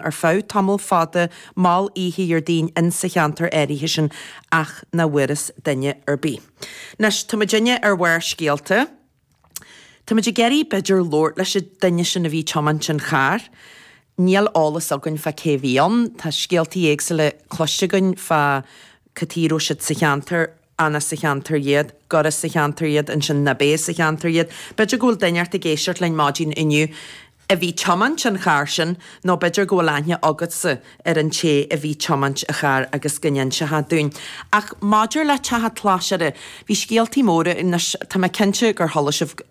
Ar feadh tamall fada, mall oíche Déardaoin in sa cheantar áirithe sin ach nach bhfuarthas duine ar bith. Anois, tá muidinne ar Bharrscéalta. Tá muid ag iarraidh b'fhéidir labhairt leis an duine sin a bhí tiomáint an chairr. Níl eolas againn fá cé bhí ann. Tá scéaltaí éagsúla cloiste againn fá cad tuige raibh siad sa cheantar. an as an cheantar iad, gur as an cheantar iad, ansin nach b'é as an cheantar iad. B'fhéidir go bhfuil duine inteacht ag éisteacht linn maidin inniu a bhí tiomáint an chairr sin, nó b'fhéidir go bhfuil aithne agatsa ar an té a bhí tiomáint an chairr agus go n-inseofá dúinn. Ach maidir le Teach Laisare, bhí scéaltaí móra anois, tá mé cinnte gur chuala sibh go.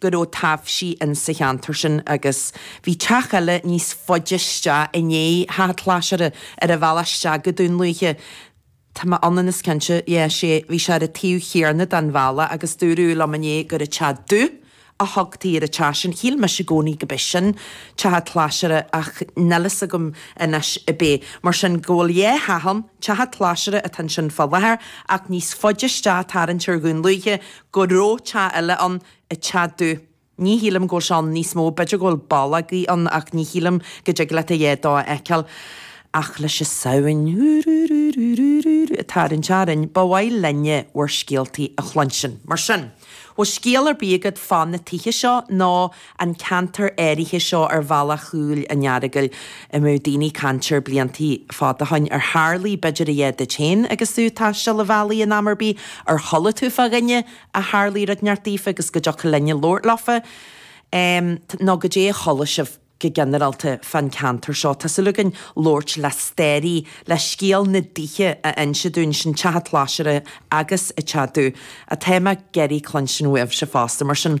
go raibh taibhsí in sa cheantar sin agus bhí teach eile níos faide isteach i ndiaidh Theach Laisare ar an bhealach isteach go Dún Lúiche. Tá mé ionann is cinnte, yeah, sé, bhí sé ar an taobh chéanna den bhealach agus dúradh liom inné gur an Teach Dubh a thugtaí ar an teach sin. Shíl mise i gcónaí go b'é sin Teach Laisare ach níl fhios agam anois ab é. Mar sin, go bhfuil dhá theach ann, Teach Laisare atá ansin fá láthair ach níos faide isteach tarraingt ar Dhún Lúiche, go raibh teach eile ann, an Teach Dubh. Ní shílim go bhfuil sé ann níos mó, b'fhéidir go bhfuil ballógaí ann ach ní shílim go dtig leat a dhath dó a fheiceáil ach leis an Samhain ag tarraingt orainn. Ba mhaith linne bhur scéaltaí a chluinstin. Mar sin, bhfuil scéal ar bith agat fá na tithe seo nó an ceantar áirithe seo ar Bhealach Chúil an Earagail. A mbíodh daoine ag caint air bliantaí fada ó shoin ar tharlaigh, b'fhéidir a dhath duit féin agus tú ag taisteal an bhealaigh in am ar bith, ar chuala tú fá dhuine a tharlaigh rud inteacht daofa agus go dtiocfadh linne labhairt leofa? Em, nó goidé a chuala sibh go ginearálta fán ceantar seo? Tá súil againn labhairt le stairí le scéal na dtithe a inse dúinn, sin Teach Laisare agus an Teach Dubh, ach tá mé ag iarraidh cluinstin uaibhse fosta, mar sin.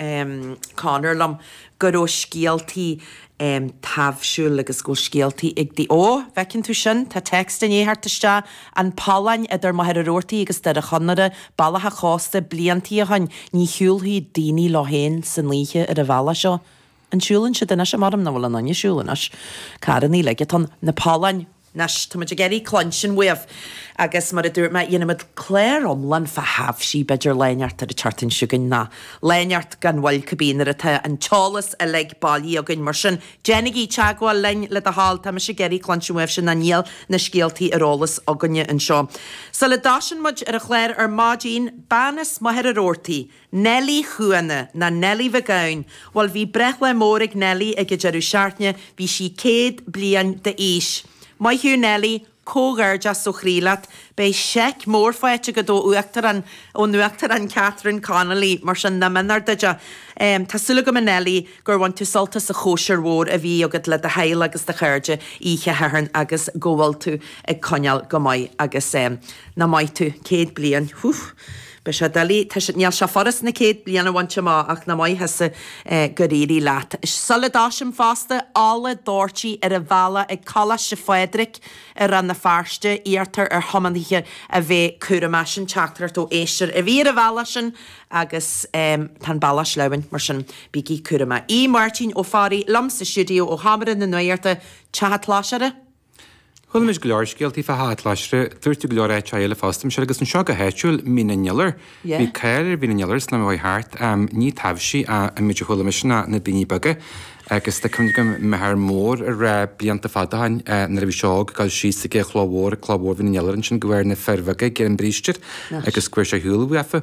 um Connor liom go raibh scéaltaí um taibhsiúil agus go bhfuil scéaltaí ag daoine. Ó, bhfeiceann tú sin, tá téacs i ndéidh a theacht isteach, An Pollán idir Machaire Rabhartaigh agus Doire Chonaire, bealach an chósta, bliantaí ó shoin, ní shiúlfadh daoine leo féin san oíche ar an bhealach seo. An siúlann siad anois? Ar m'anam nach bhfuil aon duine ag siúl anois. Carrannaí uilig atá ann. Na Polláin. Anois, tá muid ag iarraidh cluinstin uaibh, agus mar a dúirt mé, dhéanfaidh muid clár iomlán fá thaibhsí, b'fhéidir lá inteacht ar an tseachtain seo chugainn, nó lá inteacht gan mhoill cibé nuair atá an t-eolas uilig bailithe againn, mar sin, déanaigí teagmháil linn le do thoil, táimid ag iarraidh cluinstin uaibhse nó níl na scéaltaí ar eolas againne anseo. Sula dtoisíonn muid ar an chlár ar maidin, bean as Machaire Rabhartaigh, Nellie Chuanna, nó Nellie Mhic Gabhann, bhuel bhí breithlá mór ag Nellie ag an deireadh seachtaine, bhí sí 100 bliain d'aois. Maith thú Nellie, comhghairdeas ó chroí leat. Beidh seic mór faighte agat ó Uachtarán, ón Uachtarán Catherine Connolly, mar sin ná mionardaigh é. Tá súil agam a Nellie gur bhain tú sult as an chóisir mhór a bhí agat le do theaghlaigh agus do chairde oíche Shathairn agus go bhfuil tú ag coinneáil go maith agus nach maith tú, 100 bliain, hú! Beidh sé doiligh, tá sé, níl sé furast an céad bliain a bhaint amach ach nach maith thusa, go n-éirí leat. Sula dtoisim fosta, ola doirte ar an bhealach ag Coláiste Phádraig i Rann na Feirste, iarrtar ar thiománaithe a bheith cúramach, sin teachtaireacht ó éisteoir a bhí ar an bhealach sin agus tá an bealach sleamhain, mar sin bígí cúramach. Bhí Máirtín Ó Fearraigh liom sa stiúideo ó Shamhradh na Naoi Fhearta, Teach Atlásaire. Chualaimid go leor scéaltaí fá theach glasraí, doirteadh go leor áiteacha eile fosta, Michelle, agus anseo go háitiúil, Mín an Iolair, bhí cáil ar Mhín an Iolair san am a bhí thart, ní taibhsí an méid a chuala mise ná na daoine beaga, agus tá cuimhne agam m'athair mór ag rá blianta fada ó shin nuair a bhí sé óg, ag dul síos ag Cloch Mhór, ag Cloch Mhór Mhín an Iolair ansin, go bhfuair na fir bheaga greim bríste air agus go bhfuair sé ar shiúl uofa.